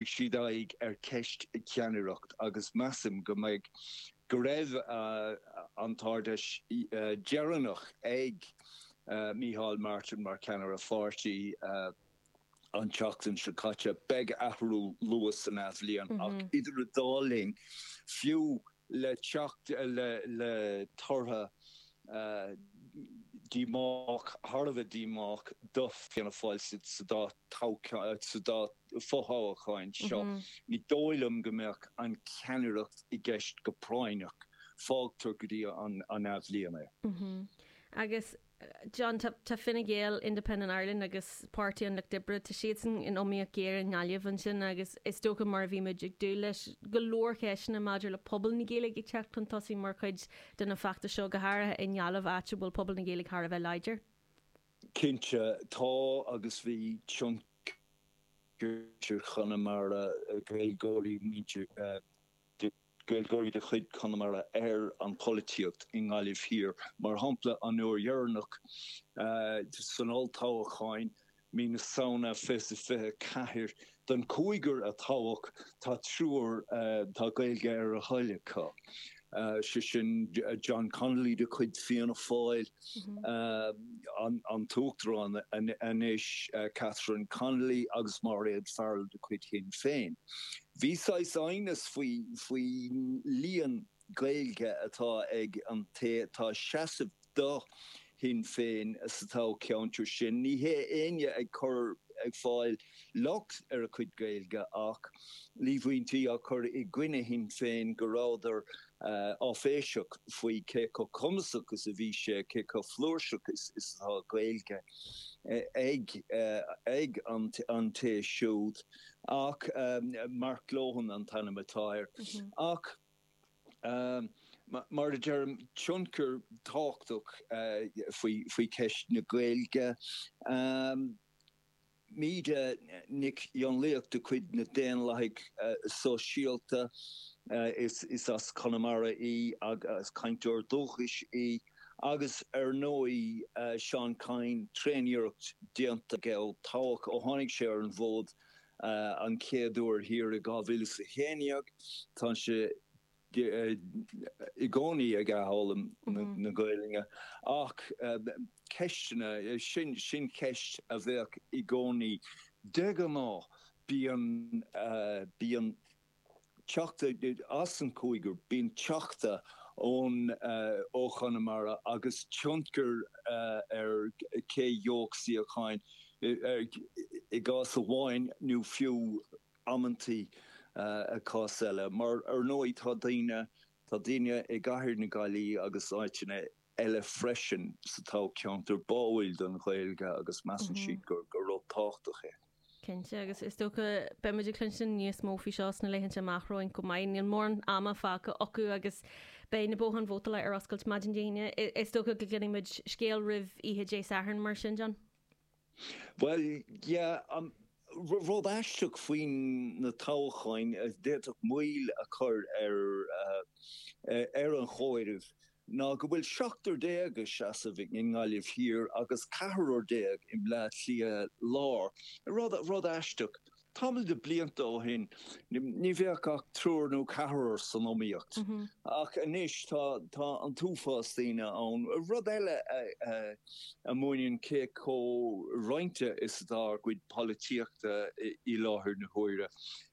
siad aghaidh ar cheist na ceannaireachta agus measaim go mbeidh go raibh an Ard Fheis dheireanach ag Micheál Martin mar cheannaire pháirtí an tseachtain seo caite. Beidh athrú luath san athbhliain ach idir an dá linn, fiú, le teacht le torthaí díomách, thar a bheith díomách, do Fianna Fáil sa dá fho-thoghacháin seo. Ní dóigh liom go mbeadh an ceannaireacht i gceist go práinneach. Fágtar go dtí an athbhliain é. Agus John, tá, tá Fine Gael, Independent Ireland agus Páirtí an Lucht Oibre, tá siadsan in iomaíocht ghéar i nGaillimh ansin agus is dócha mar a bhí muid ag dúil leis, go leor ceisteanna maidir le pobal na Gaeilge ag teacht chun tosaigh mar chuid den fheachtas seo, go háirithe i nGaillimh áit a bhfuil pobal na Gaeilge thar a bheith láidir. Cinnte, tá agus bhí tionchar ag Conamara, Gaeilgeoirí, muintir Gaillimh. Gaeilgeoirí de chuid Chonamara ar an bpolaitíocht i nGaillimh Thiar. Mar shampla, an uair dheireanach san olltoghchán, mí na Samhna, 24 den chúigear a toghadh, tá triúr, tá Gaeilge ar a dtoil acu, sé sin John Connolly de chuid Fianna Fáil, an tUachtarán anois, Catherine Connolly agus Mairéad Farrell de chuid Shinn Féin. Bhí saghas aighneas faoi líon Gaeilge atá ag an té atá ag seasamh do Shinn Féin sa toghcheantar sin. Ní raibh éinne ag cur ag fáil locht ar a chuid Gaeilge ach líomhaintí á cur i gcoinne Shinn Féin go rabhadar áiféiseach faoi cé chomh cumasach is a bhí sé, cé chomh flúirseach is atá Gaeilge ag an té siúd. Ach Mark Lohan an t-ainm atá air. Ach mar a deirim, tionchar tábhachtach faoi cheist na Gaeilge. Míde Nic Fhionnlaoich de chuid na nDaonlathaithe Sóisialta, is as Conamara í agus cainteoir dúchais í, Agus ar ndóigh Seán Kyne, tréan-iarracht déanta aige ó toghadh, ó tháinig sé ar an bhfód an chéad uair thiar i 2011. Tá sé i gcónaí ag athfhoghlaim na Gaeilge. Ach ceisteanna, sin ceist a bheadh i gcónaí. De ghnáth bíonn Teachta as an cúigear, bíonn Teachta ón ó Chonamara agus tionchar ar cé gheobhadh suíocháin i gcás amháin nó fiú amantaí i gcás eile mar ar ndóigh tá daoine, tá daoine i gCathair na Gaillimhe agus áiteanna eile freisin sa toghcheantar báúil don Ghaeilge agus measann siad gur rud tábhachtach é. Cinnte, agus is dócha beimid ag cluinstin níos mó faoi seo sna laethanta amach romhainn chomh maith. Níl mórán ama fágtha acu agus beidh na botháin vótála ar oscailt maidin Dé hAoine. Is dócha go gcluinfimid scéal roimh oíche Dé Sathairn mar sin, John? Bhuel, yeah, rud aisteach faoi na toghcháin a d'fhéadfadh moill a chur ar an chomhaireamh ná go bhfuil seachtar déag ag seasamh i nGaillimh Thiar agus ceathrar déag i mBleá Cliath Lár. Rud aisteach. Tamall de blianta ó shin ní bheadh ach triúr nó ceathrar san iomaíocht ach anois tá an t-uafás daoine ann. Rud eile a mhúineann cé chomh roinnte is atá ár gcuid polaitíochta i láthair na huaire.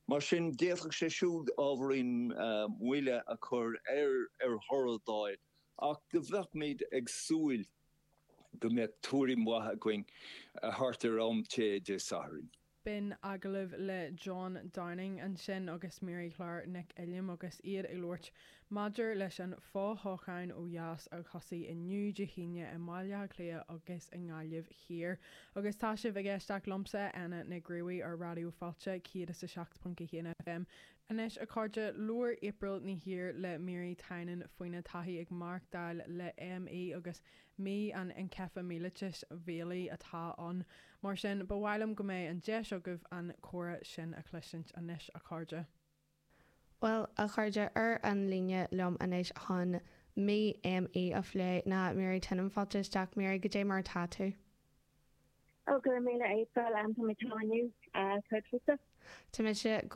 Mar sin d'fhéadfadh sé siúd ábhairín moille a chur ar thoradh d'fháil ach do bheadh muid ag súil go mbeadh tuairim mhaith againn thart ar am tae Dé Sathairn. B'in agallamh le John Downing ansin agus Mary Clare Nic Uilliam agus iad ag labhairt maidir leis an fothoghchán ó dheas a thosaigh inniu, Dé hAoine, i mBaile Átha Cliath agus i nGaillimh Thiar. Agus tá sibh ag éisteacht liomsa, Éanna Nic Ruadh, ar Raidió Fáilte 107.1 FM. Anois, a chairde, labhair April Ní hÍr le Mary Tynan faoina taithí ag maireachtáil le ME agus Mí an Einceifilimiailítis Mhiailgigh atá ann. Mar sin, ba mhaith liom go mbeidh an deis agaibh an comhrá sin a chloisint anois, a chairde. Bhuel, a chairde, ar an líne liom anois chun Mí ME a phlé ná Mary Tynan. Fáilte isteach, Mary, cad é mar atá tú? Oh, go raibh míle April, táimid seo inniu. Céard fútsa? Tá mise go